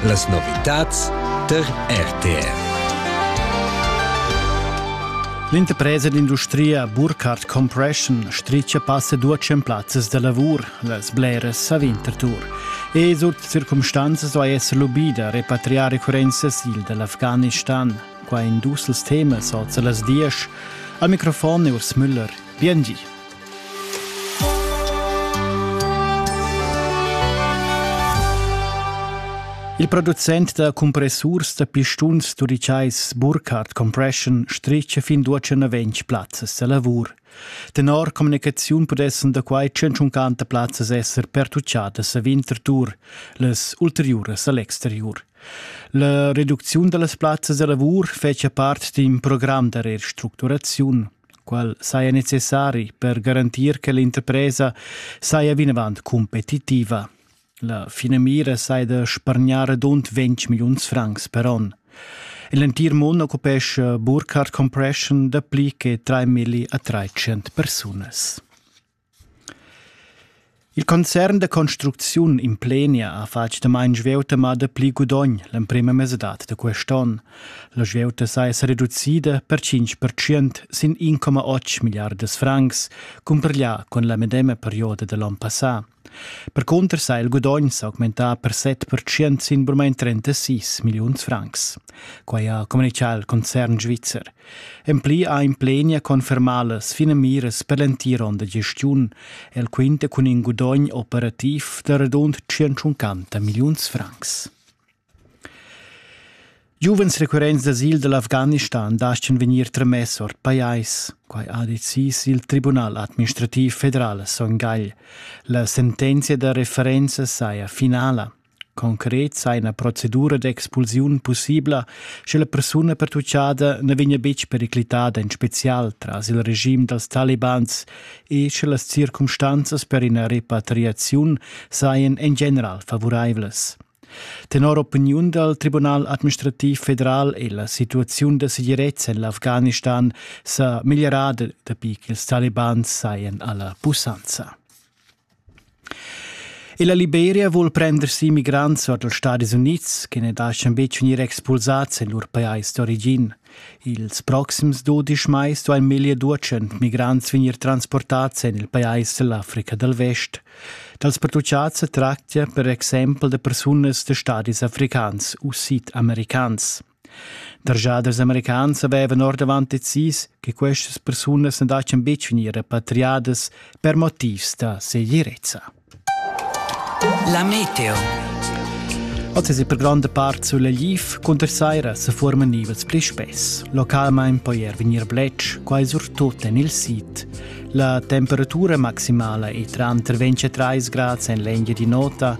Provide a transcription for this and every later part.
Las novitads tar RTR. L'interpresa d'industria Burkhardt Compression stricia passa duatschen plazzas da lavur las bleras a Winterthur. E sut circumstanzas vai esser lubida repatriar recurrenzas il dall'Afghanistan. Qua in dus temas oza las diesch. Al microfon Urs Müller. Biengi. Il producent da compressurs da pistuns turitschais Burkhardt Compression stricha fin duotschan ventg plazzas da lavur. Tenor communicaziun pudessan da quai 150 plazzas esser pertucciadas a Winterthur, las ulteriuras a l'exterior. La reducziun da las plazzas da lavur fetcha part d'in program da restructuraziun. qual saja necessari per garantir che l'interpresa saja vinavant competitiva. La finamira saja da spargnar redund 20 milliuns francs per onn. L'entir mund occupesce Burkhardt Compression dapli che 3 milli a 300 persunas. Il concern da construcziun implenia ha fatg damaun svieuta ma dapli gudogn l'emprema mesadad da quest onn. La svieuta saja sa reducida per 5% sin 1,8 milliardas francs, cumpareglià cun la medema perioda da l'onn passà. Percunter sa il gudogn s'augmentà per 7% sin burmain 36 milliuns francs. Quai ha communitgà il concern svizzer. En pli ha implenia confermà las finamiras per l'entira onda gestiun. El quinta cun in gudogn operativ da radund 150 milliuns francs. Giuvens recurrents d'asil dall'Afghanistan daschan vegnir tramess ord pajais. Quai ha decis il Tribunal administrativ federal a Son Gagl. La sentenzia da referenza saja finala. Concret sa ina procedura d'expulsiun pussibla, sche la persuna pertutgada na vegnia betg periclitada en spezial tras il regim dals talibans e sche las circumstanzas per ina repatriaziun sajan en general favuraivlas. Tenor opiniun dal Tribunal administrativ federal è la situaziun da segirezza en l'Afghanistan sa meglierada dapi ch'ils talibans sajan alla pussanza. E la Liberia vul prender si migrants ord els Stadis Unids che ne lascian betg vegnir expulsads en lur pajais d'origin. Ils proxims dudisch mais duain meglio duecent migrants vegnir transportads en il pajais dell'Africa dal Vest. Dals pertucciads tractia per exempel da persunas da stadis africans u sid-americans. Derschaders americans havevan ordavant decis che questas persunas non dattan betg vegnir repatriadas per motivs da segirezza. La meteo. Oz è per grande part sulla Liv cunter saira se formen nivels pli spess. Localmente poi er venir bletsch, quai surtut en il sid. La temperatura maximala è tra 23 gradi en l'eglia di nota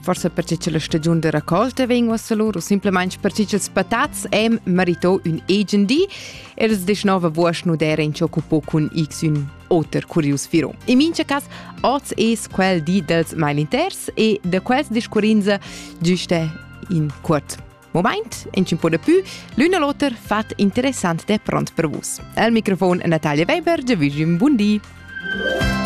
Forse perche che la stagiun da raccolta vegn uossa lur o simplemente perche ch'ils patats hem merito ün egen di e els deschnova vuosch nu d'eran ciò occupò cun x ün oter curius firo. In mincha cas, oz es quel di dels mailinters e da quels discurrinza giuste in cuort moment, in un po de più, l'un e l'oter fat interessant de pront per vus. Al microfon Natalia Weber, Giavigim Bundi.